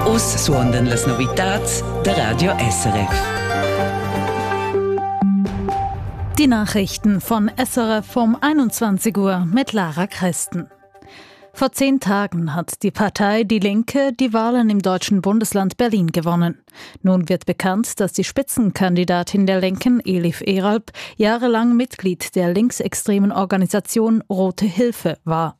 Uss suondan las novitads da Radio SRF. Die Nachrichten von SRF um 21 Uhr mit Lara Christen. Vor zehn Tagen hat die Partei Die Linke die Wahlen im deutschen Bundesland Berlin gewonnen. Nun wird bekannt, dass die Spitzenkandidatin der Linken, Elif Eralp, jahrelang Mitglied der linksextremen Organisation Rote Hilfe war.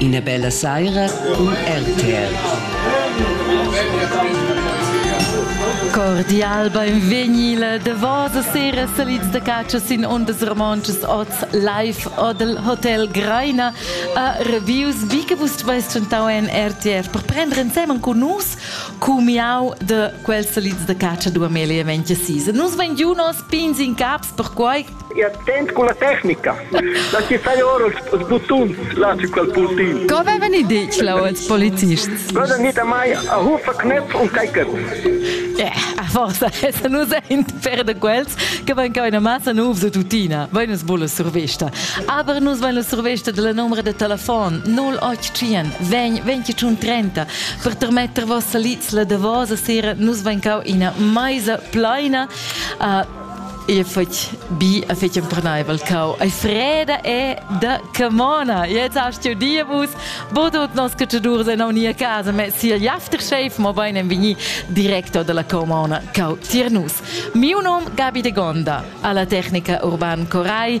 Ina bella saira cun RTL. Cordial beinvegni la davosa sera salids da catscha sin ondas romontschas oz live odel Hotel Greina a Reviews. Wie gewusst vais tschentau en RTF per prender ensemen con nus cumiau de quels salids da catscha du Amelia Ventia Sisa. Nus vegn giu nos pins in caps perquai E attent con la tecnica, da chi fai ora els buttuns là su quel puntin. Co avevan i ditg là als polizists? Vada nita mai a rufa knöpf und kaiket. Yeah, a forza, essa nu saint per da quels che van ca una massa nuvs da tutina, vain es bulla survista. Aber nus vain la survista della numero de telefon 085 20 21 30 per termetter vossa litzla de vosa sera nus vain cau ina maisa plaina uh, Io fetg bi e fetg empernaivel cau. Ei freda e da camona. Jetzt hast du die Bus, wo du nos cacciadurs en nia casa, ma si il aftershave, mo bein en vini directo dalla camona cau tier nus. Miu nom Gabi de Gonda, alla tecnica Urban Corai